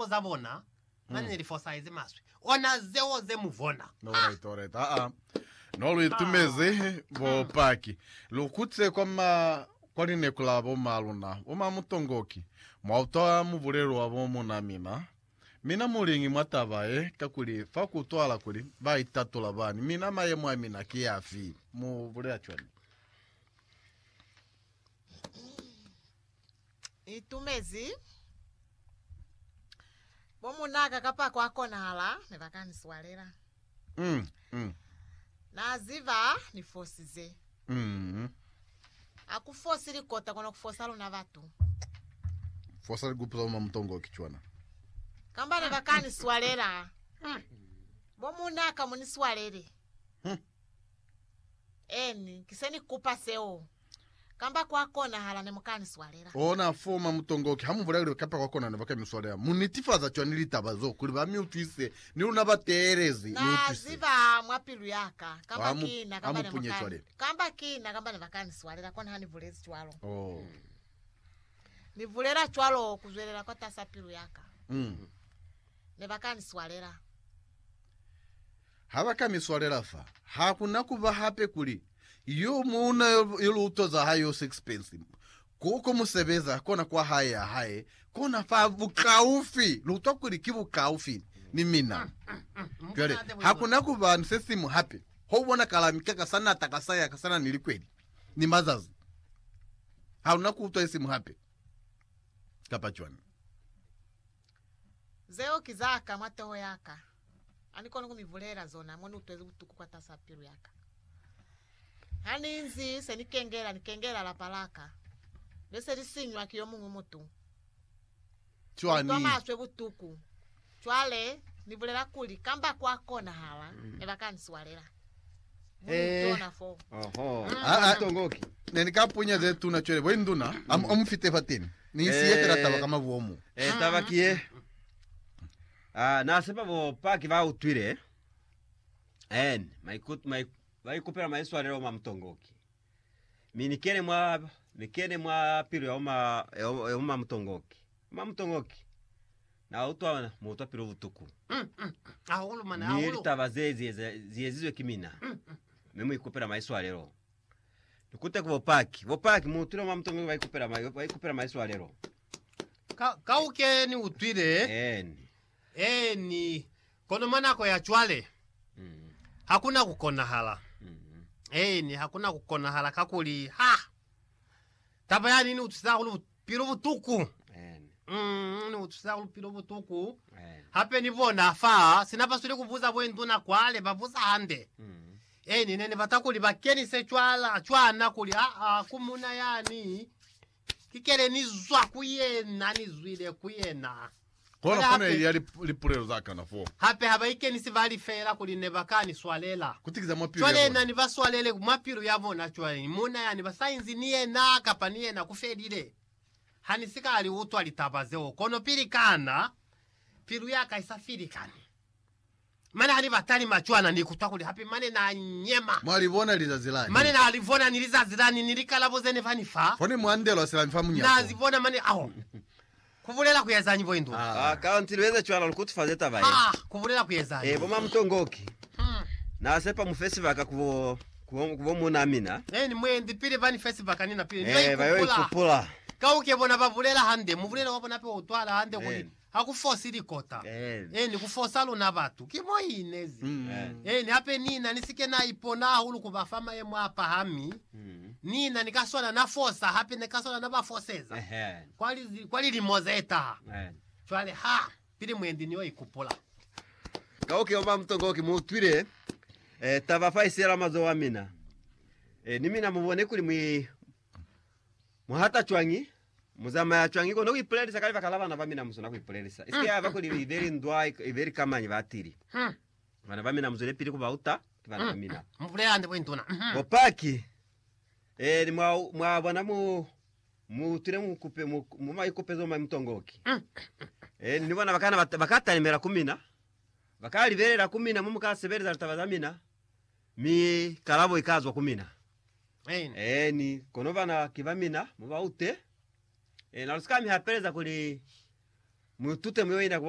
lilimo za bona ha ne li fosahezi maswe, ona zeo ze mu bona. Alright, alright. Aa. No lu itumezi bopaki. Lu kutse kwa ma kwa lineku la bo ma luna. Bo ma Mutongoki. Mwa utwa mubulelo wa bo muna mina. Mina muliñi mwa taba ye? Kakuli fa ku utwala kuli ba itatula bani. Mina mayemo a mina ki afi? Mu bulela cwani? itumezi bomunaka kapa kwa konahala ne ba ka ni swalela mm, mm. na ziva ni fosize mm. a ku fosi likota kona ku fosa luna batu fosa ligupu za uma mutongo kichwana kamba ne ba ka ni swalela hmm. bomunaka mu ni swalele hmm. eni kise ni kupa seo Kamba kwa konahala ne mu ka ni swalela. Ona fo mwa mutongoki ha mu bulailu kamba kwa konahala ne ba ka mi swalela. Mu nitifaza cwani litaba zo? Kuli ba mi utwise, ni luna ba teelezi Na ni utwise. ziba mwa pilu ya ka, Wa kamba mu- ki na wa kamba mu ne mu punye ka cwale. ni, kamba ki na kamba ne ba ka ni swalela, kono ha ni bulezi cwalo. Oh. Ni bulela cwalo ku zwelela kwatas'a pilu ya ka. Mm. Ne ba ka ni swalela. Ha ba ka mi swalela fa, ha ku na ku ba hape kuli, Yo muuna yo liuto za hae yo sixpence, ko ko mu sebeza, kona kwa hae ya hae, kona fa bukaufi. Lu utwa kuli ki bukaufi ni mina. Cwale, ha ku na ku ba ni se siñwi hape. Ho bonakala mika ka sa nata ka sa ya ka sa na ni likweli ni mazazi. Ha lu na ku utwa isiñwi hape, kapa cwani. Zeo ki za ka mwa toho ya ka. Ani koni ku mi bulela zona mo ni utwezi butuku kwatasa pilu yaka. Ha ni inzi se ni kengela, ni kengela lapa laka, be se li sinywa ki yo muñwi mutu. Cwani? Ni twa maswe butuku. Cwale, ni bulela kuli, kamba kwa konahala, ne ba ka ni swalela. Mu ni utona fo. Oho. Ah, ah. Tongoki. Ne ni ka punya ze tuna cwele, bo induna, amu, amu fite fateni. Ni isiye fela taba ka mabu omu. Eh, taba ki ye. Ah, na sepa bo Paki ba utwile and maikut mai ba ikupela maiswalelo ma mutongoki. Mi ni kene mwa ni kene mwa pilu ya uma ya uma- ya uma mutongoki. Uma mutongoki. Na utwa mu utwa pilu butuku. Hahulu mane, Ni hahulu. litaba ze ze ze- ziyezizwe ki mina. Mi mu ikupela maiswalelo. Ni kute ku bopaki. Bopaki, mu utwile mwa mutongo yo ba ikupela, ma, ba ikupela maiswalelo. Ka, kauke ni utwile. Eeni. Eeni. Kono mwa nako ya cwale, Mm. hakuna ku konahala. Mm. Eeni, hakuna ku konahala, kakuli, ha! Taba yani ni utwisa hahulu bu- pilu butuku. Eeni. Mm, ni utwisa hahulu pilu butuku. Eeni. Hape ni bona fa, sina ba swile ku buza bwenduna kwale, ba buza hande. Mm. Eeni, ne ni bata kuli ba kenise cwala cwana kuli, Aa, ku muna yani, ki kele ni zwa ku yena, ni zwile ku yena. Kono Kono, kono hape, ili ya lip, lipulelo za kana fo. hape ha ba ikenisi ba li feela kuli ne ba ka ni swalela. Ku tikiza mwa pilu ya Cwale, Na bona. ni ba swalele mwa pilu ya bona. Cwale, muna yani ba sa inzi ni yena, kapa ni yena, ku felile. Ha ni si ka li utwa litaba zeo. Kono pili kana, pilu ya ka i sa filikani. Mane ha ni ba talima cwana, ni ikutwa kuli hape mane na nyema. Mwa li bona lizazi lani. Mane na li bona ni lizazi lani, ni likalabo zene fa ni fa. Fo ne mwa andelo a silami fa munyako. Na zi bona mane, aho. Ku bulela ku ezañi bo induna? Ha. Ha, ka unti lu eza cwana, lu kutufaze taba ye. Ha, ku bulela ku ezañi? Ee, bo mamutongoki. Hmm. Na sepa mu fe sibaka ku bo, ku bo, ku bo muuna mina. Ee, ni mwendi pili ba ni fe sibaka ni na pili. Ni yo ikupula. Ee, ba yo ikupula. Ka u ke bona ba bulela hande, mubulelo wa bona hape wa utwahala hande kuli. Amen. Ha ku fosi likota, eeni, ku fosa luna batu. Ki mo i inezi. Eeni, hape nina ni si ke na ipona hahulu ku ba fa mayemo a pahami, nina ni ka swana na fosa, hape ne ka swana na ba foseza kwa, kwa lilimo ze taha. Cwale, ha, pili mwendi ni yo i kupula. Ka o keo ba mutongo ki mu utwile eh, taba fa isela mazoho a mina. Eh, ni mina mu bone kuli mwi, Muhata cwañi? Muzamaya cwañi? Kona kuipulelisa ka libaka la bana bamina musona kuipulelisa. Isike yaba kuli libe lindwa, ibe likamanyi batili. Bana bamina muzwele pili kubauta, ki bana bamina. Mubulela hande boituna. Bupaki. Eh, ni mwa, mwa bona mu, mu utwile mukupe, mu, mu maikupezo ma mutongoki. Eh, ni bona bakana bat- bakatalimela kumina. Bakalibelela kumina mo mukasebeleza litaba za mina. Mi kalabo ikazwa ku mina. Eeni, kono bana ki ba mina, mubaute. Eena, lusika mihapeleza kuli muitute muyoina ku bo